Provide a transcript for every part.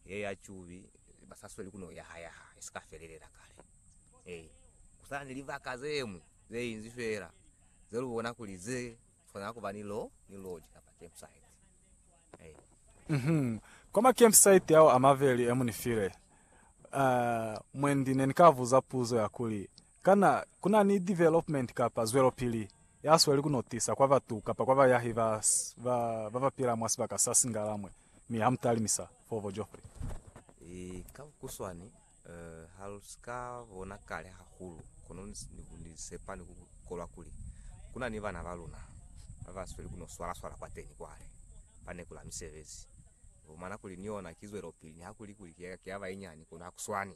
Ye ya cubi ba sa sweli ku no yahayaha i si ka felelela kale. He, ku sa na ni libaka ze ñwi ze inzi fela ze lu bona kuli ze swanela ku ba ni lo, ni loji kapa campsite. He. Uhum. Kwa ma campsite ao a maveli e mu ni file, uh, mwendi ne ni ka buza puzo ya kuli, Kana ku na ni development kapa zwelopili ya sweli ku no tisa kwa batu kapa kwa bayahi ba ba ba pila mwa sibaka sa Singalamwe mi ha mu talimisa Fovo Geoffrey? Ee, ka bukuswani, ha lu si ka bona kale hahulu, kono ni sepa ni ku kolwa kuli ku na ni bana ba luna ba ba sweli ku no swala-swala kwateni kwale ba nekula misebezi. Ni fumana kuli ni yona ki zwelopili, nihakulikuli ki ya bayinyani, kono ha ku swani.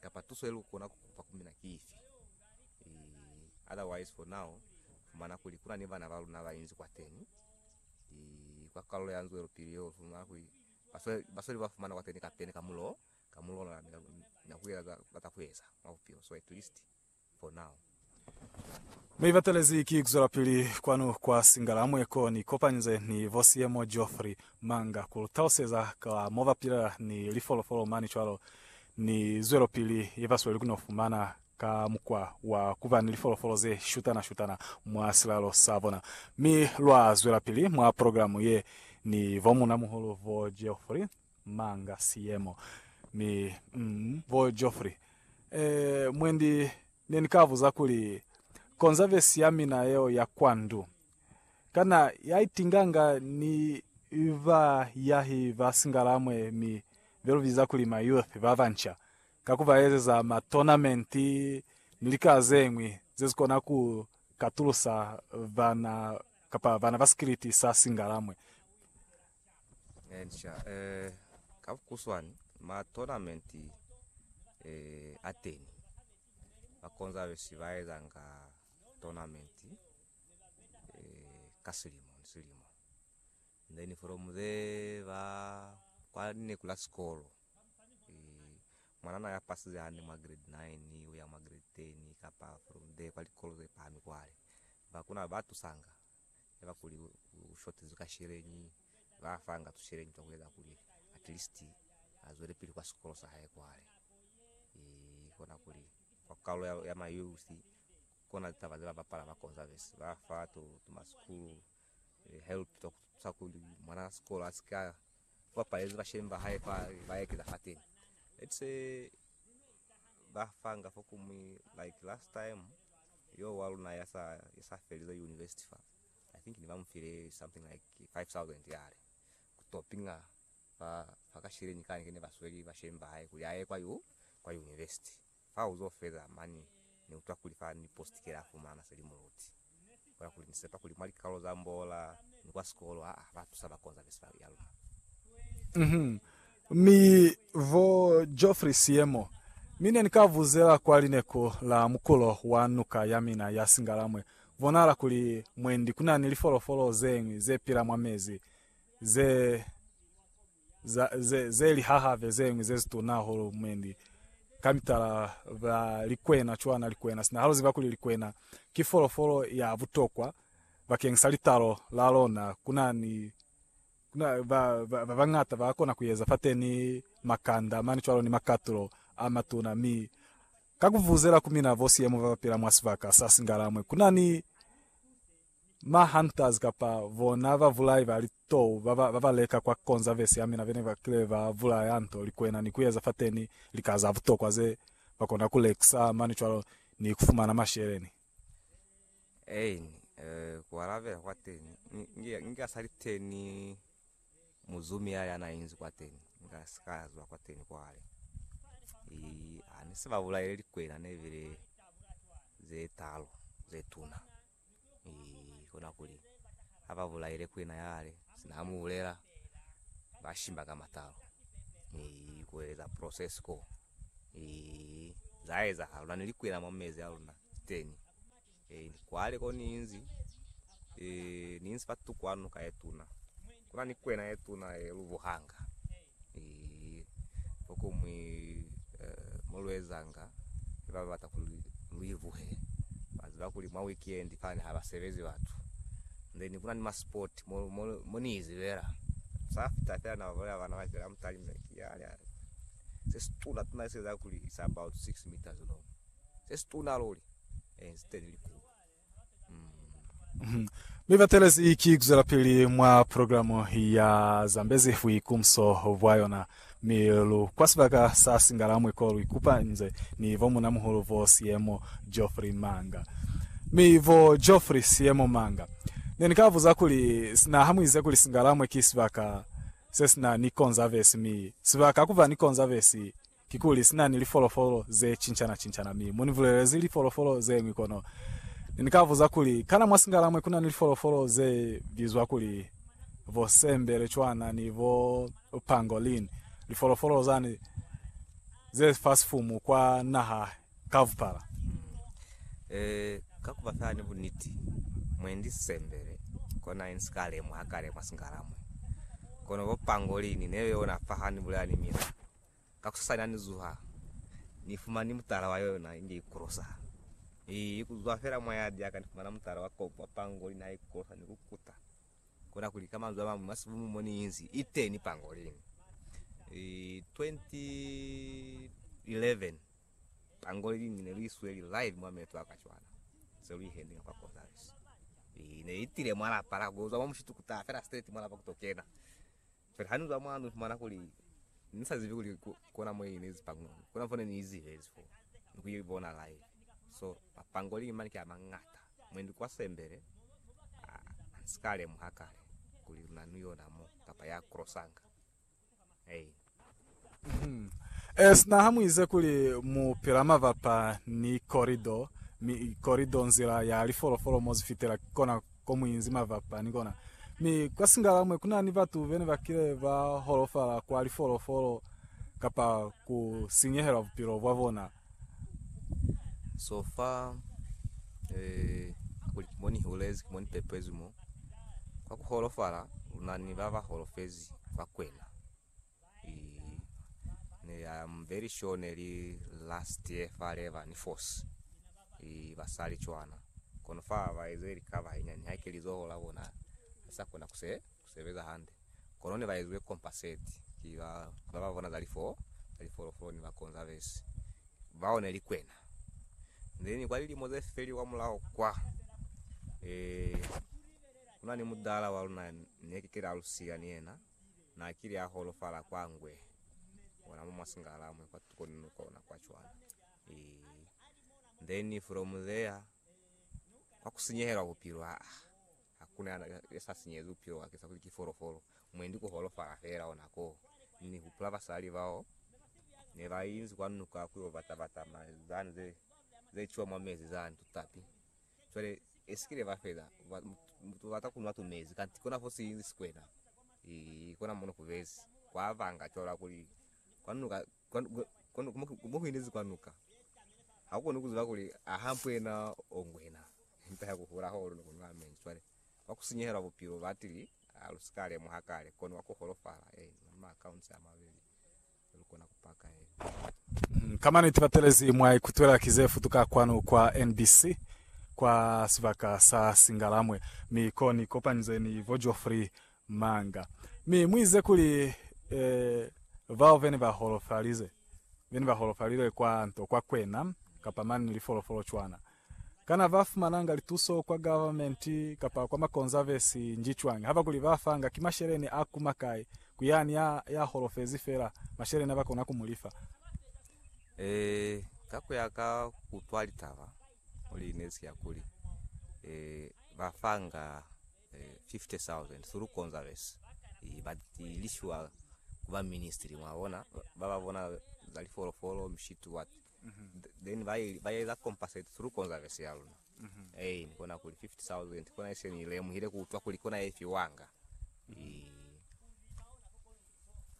kapa tuso ye lu kona ku kupa ku mina ki ifi? Ii, otherwise for now fumana kuli kuna ni bana ba luna ba inzi kwateni, ii, kwa kalulo ya nzwelopili yeo lu fumana kuli ba sole, ba sole ba fumana kwateni kapeni ka mulo, ka mulo ona ni, ni, ni na ku eza za ba za ku eza mwa bupilo, so at least Ne ni batelezi ki kuzwelapili kwanu kwa Singalamwe ko ni kopanyize ni bo Seymour Geoffrey Manga ku lu taluseza ka mo ba pilela ni lifolofolo mane cwalo ni zwelopili ye ba sweli ku no fumana ka mukwa wa ku ba ni lifolofolo ze shutana-shutana mwa silalo sa bona. Mi lwa zwelapili mwa programe ye ni bo munamuhulu bo Geoffrey. Manga siyemo mi mm bo Geoffrey eh mwendi ne ni ka buza kuli konza vesi ya mina yeo ya kwa ndu kana ya itinganga ni ba yahi ba singalamwe mi be lu biza kuli ma youth ba banca ka ku ba ezeza ma tournament ni lika zeñwi ze si kona ku katulusa bana kapa bana ba sikiliti sa singalamwe Encia, eh, ka vukuswani, ma tournament eh, a teni bakonza besi baezanga tournament eh, ka silimo ni silimo then from there ba kwa lineku la sikolo eh, mwanana ya pasize hande mwa grade 9 uya mwa grade 10 kapa from there kwa likolo ze pahami kwale bakuna batusanga yaba kuli u shotezwi ka sheleñi, ba fa nga tusheleñi twa kueza kuli at least a zwelepili kwa sikolo sa hae kwale. I kona kuli kwa kalo ya, ya ma youth kona litaba ze ba bapala ba Conserves, ba fa to, to ma school help twa ku tusa kuli mwana wa sikolo a si ka Ba palezi bashemi ba hae fa ba ekeza fateni. Let's say ba fanga fo kumwi like last time yo wa luna ya sa ya sa felize university fa. I think ni ba mu file something like 5000 yale. Ku topinga fa fa ka shileni kani kene ba sweli bashemi ba hae kuli a ye kwa yu kwa university. Fa uzo feza mani, Ni utwa kuli fa ni postikele a fumana se li muluti. Kola kuli ni sepa kuli mwa likalolo za mbola ni kwa sikolo a ba tusa ba konza vesi ya luna. Uhum. Mi vo Geoffrey Seymour, mi ne ni ka vuzela kwa lineku la mukulo wa nuka ya mina ya Singalamwe. Bonahala kuli mwendi kuna ni lifolofolo zeñwi ze pila mwa mezi, ze. za, ze, ze li hahave zeñwi zezituna hahulu, mwendi, ka mitala, ba likwena cwana, likwena sina. Ha lu ziba kuli likwena ki folofolo ya butokwa bakeng sa litalo la lona, kuna ni, kuna, ba, ba, ba bañata ba kona kueza fateni makanda mani cwalo ni makatulo a matuna. Mi, ka kuvuzela ku mina bo siyemo ba bapila mwa sibaka sa singalamwe, kuna ni. Ma hunters kapa bona ba vulai ba litou baba baba leka kwa conservesi ya mina bene ba kile ba bulaya nto, likwena ni kueza fateni lika za butokwa ze ba kona ku lekisa mane cwalo ni ku fumana masheleni. Eini, eh, ku alabela kwa teni nge nga sa li teni muzumi ya ya na inzi kwa teni nga si ka zwa kwa teni kwale. Ii, ha ni si ba bulaile likwena ne bile ze talo ze tuna. Ii, kona kuli ha ba bulaile kwena ya hale, sina ha mu bulela, ba shimba ka matalo. Ii, ku eleza process ko. Ii, za ezahala. Luna ni likwena mwa mezi a luna teni. Ii, kwale ko ni inzi, ii, ni inzi fa tuku hanu ka ye tuna. Kuna ni kwena ye tuna ye lubuhanga. Fokuñwi mo lu ezanga ni ba ba bata kuli lu ivuhe, ba ziba kuli mwa weekend fani ha ba sebezi batu. Then ku na ni ma sport mo, mo, mo ni izibela. Sa fita fela na ba bolela bana ba kela mutali mna ki ya, ya, se si tuna tuna se za kuli it's about six meters long. Se si tuna luli, eh, instead likulu. Mi batelezi ki kuzwelapili mwa programe ya Zambezi Buikumso bwa yona, mi lu kwa sibaka sa Singalamwe ko lu ikupa nze ni bo Munamuhulu bo Siemo Geoffrey Manga. Mi bo Geoffrey Siemo Manga, ne ni ka buza kuli, sina ha mu ize kuli Singalamwe ki sibaka se sina ni konzavesi, mi sibaka kuba ni konzavesi Kikuli, sina ni lifolofolo ze cincana-cincana, mi mu ni bulelezi lifolofolo ze ñwi kono. Ne ni ka buza kuli, Kana mwa singala mwe kuna ni lifolofolo ze bizwa kuli bo sembelecwana ni bo pangolin, lifolofolo zani ze fa sifumu kwa naha kabupala? Ee, ka ku ba fela ni buniti, mwe ndi sisembele, kona ni si ka lemuha kale mwa singala mwe. Kono bo pangolin ne yona fa ha ni bulela ni mina. Ka kusasani ha ni zuha, ni fumani mutala wa yona inge i kolosa. Ni kuzwa fela mwa yadi ya ka, ni fumana mutala wa kobo wa pangolini ha i kolosa ni ku kuta. Kona kuli, ka manzwi a mañwi, mwa sibumu mo ni inzi, i teni pangolini. 2011, pangolini ne lu i sweli live mwa meto a ka cwana, se lu i handinga kwa Gonzales. Ne i tile mwa lapa la kuzwa mo mushitukuta fela straight mwa lapa ku to kena. Cwale ha ni zwa mwalo ni fumana kuli ni sa zibi kuli kona mo i nezi pango, kona fo ne ni i zihezi fo ni ku i bona live. So mapangolini mani ki a mangata. Mwendi kwa Sembele ha ni si ka lemuha kale kuli luna ni yona mo kapa ya crossanga. Eyi. E, sina ha mu ize kuli mu pila mabapa ni korido, mi korido nzila ya lifolofolo mo zifitela, ki kona ko mu inzi mabapa ni kona. Mi kwa Singalamwe ku na ni batu bene ba kile ba holofala kwa lifolofolo kapa ku sinyehelwa bupilo bwa bona. So far, eh, kuli ki mo ni hulezi, ki mo ni pepezi mo, kwa ku holofala, lu na ni ba ba holofezi fa kwena. Ii, ne li, I am very sure ne li last year fa Lever ni Force. Ii, basali cwana. Kono fa ba ezwe lika bahenyani, haike lizoho la bona li sa kona ku se, ku sebeza hande. Kono ne ba ezwe compensate ki ba, ki ba ba bona za lifo, za lifolofolo ni bakonzabesi. Bao ne li kwena. Then kwa lilimo ze feli kwa mulaho kwa, eh, kuna ni mudala wa luna ne ki kile alusiya ni yena. Na kile a holofala kwa ngwe ona mo mwa singalalamwe kwa tuko ni nuka ona kwa cwana eeh then from there kwa ku sinyehelwa bupilo aa hakuna ya sa sinyehezi bupilo bwake sa kuli ki folofolo mwendi ku holofala fela ona ko ni hupula basali bao ne ba inzi kwa nuka ku yo bata bata ma zani ze ze ciwa mwa mezi zani tutapi Cwale esikile ba fela bata kunwa tumezi kanti kona fo silinzi sikwena ii kona mono kubezi kwa banga cwalo kuli kwanuka mo kuinezi kwanuka hakukoni kuziba kuli aha mpwena o ngwena mpa ya kuhula holo no kunwa mezi cwale kwa kusinyehelwa bupilo batili alusika lemuha kale kono wa kuholofala ee maka unse amabeli Ka maniti batelezi mwa ikutwela ki ze futuka kwanu kwa NBC kwa sibaka sa Singalamwe mi ko ni kopanizwe ni bo Geoffrey Manga mi mu ize kuli, Eh, bao be ne ba holofalize, be ne ba holofalilwe kwa nto kwa kwena, kapa mane ni lifolofolo cwana. Kana ba fumananga lituso kwa government kapa kwa ma conservancy nji cwani haba kuli ba fanga? Ki masheleni a kuma kai ku yani ya ya holofezi fela masheleni aba kona ku mu lifa? Eh ka ku ya ka kutwa litaba muli ne ziya kuli eh ba fanga 50,000 through conservancy eh but lishiwa ku ba ministry mwa bona ba ba bona za li folofolo, mshitu what then ba ba eza compensate through conservancy ya luna eh ni kona kuli 50000 kona ise ni lemuhile ku utwa kuli kona efiwanga eh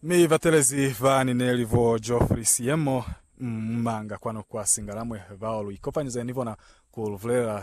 Mi batelezi ba ni neli bo Geoffrey Siyemo mmanga kwanu kwa Singalamwe bao lu ikopanyeze ni bona ku lu bulelela